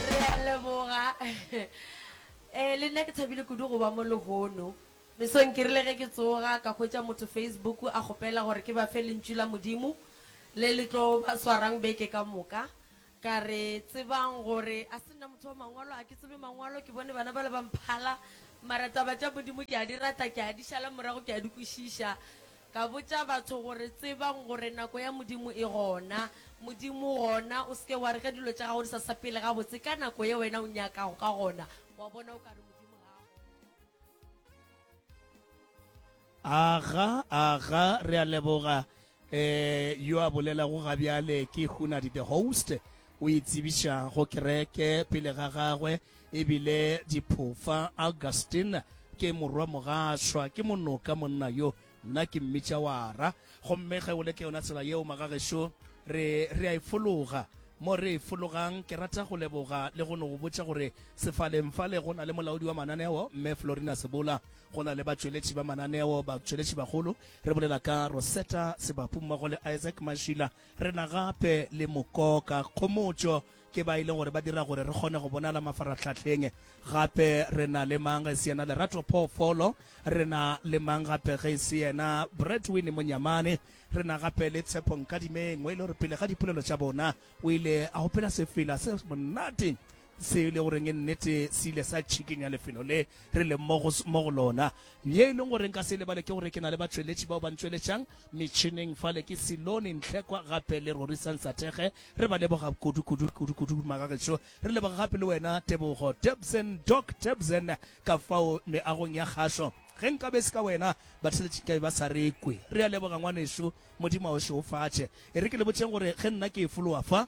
Re a leboga. Eh, le nna ke thabile kudu go ba mo lehono. Mesong ke rile ge ke tsoga ka hwetša motho Facebook a kgopela gore ke ba fe Lentšu la Modimo le le tlo ba swarang beke ka moka. Ka re, Tsebang gore a se nna motho wa Mangwalo, a ke tsebe Mangwalo, ke bone bana bale ba mphala, mara taba tša Modimo ke a di rata, ke a di šala morago, ke a di kwešiša. Ka botša batho gore, Tsebang gore nako ya Modimo e gona. Modimo o gona. O se ke wa re ge dilo tša gago di sa sepele gabotse ka nako ye wena o nyakago ka gona, wa bona, o ka re Modimo ga a gona. Aga, aga, re a leboga. Ee, yo a bolelago gabjale ke Hunadi the host. O e tsebiša go kereke pele ga gagwe e bile diphofa. Augustine ke morwamogašwa, ke monoka monna yo. Nna ke mmitša wara. Gomme ge o le ke yona tsela yeo, magagešo, re, re a e fologa. Mo re e fologang, ke rata go leboga le go no go botša gore sefaleng fale go na le molaodi wa mananeo, Mme Florina Sebola. Go na le batšweletši ba mananeo, batšweletšibagolo, re bolela ka Rosetta Sebapummogo le Isaac Mashila. Re na gape le mokoka kgomotšo ke ba e leng gore ba dira gore re kgone go bonala mafarahlahleng. Gape re na le mang ge e se yena Lerato Phoofolo, re na le mang gape ge e se yena Bretwin Monyamane, re na gape le Tshepo Nkadimeng, o e le gore pele ga dipolelo tša bona o ile a opela sefela se monate Se e le goreng e nnete se ile sa tšhikinya lefelo le re leng mo go, mo go lona. Ye e leng gore nka se lebale ke gore ke na le batšweletši bao ba ntšweletšang metšhineng fale ke Silone Ntlhekwa gape le Rorisa Nsathege. Re ba leboga kudu, kudu, kudu, kudu magagešo. Re leboga gape le wena Tebogo Tebsen, Doc Tebsen, ka fao meagong ya kgašo. Ge nka be se ka wena, batheletši nkabe ba sa re kwe. Re a leboga ngwanešu, Modimo a o šeofatše. E re ke le botšeng gore ge nna ke e fologa fa,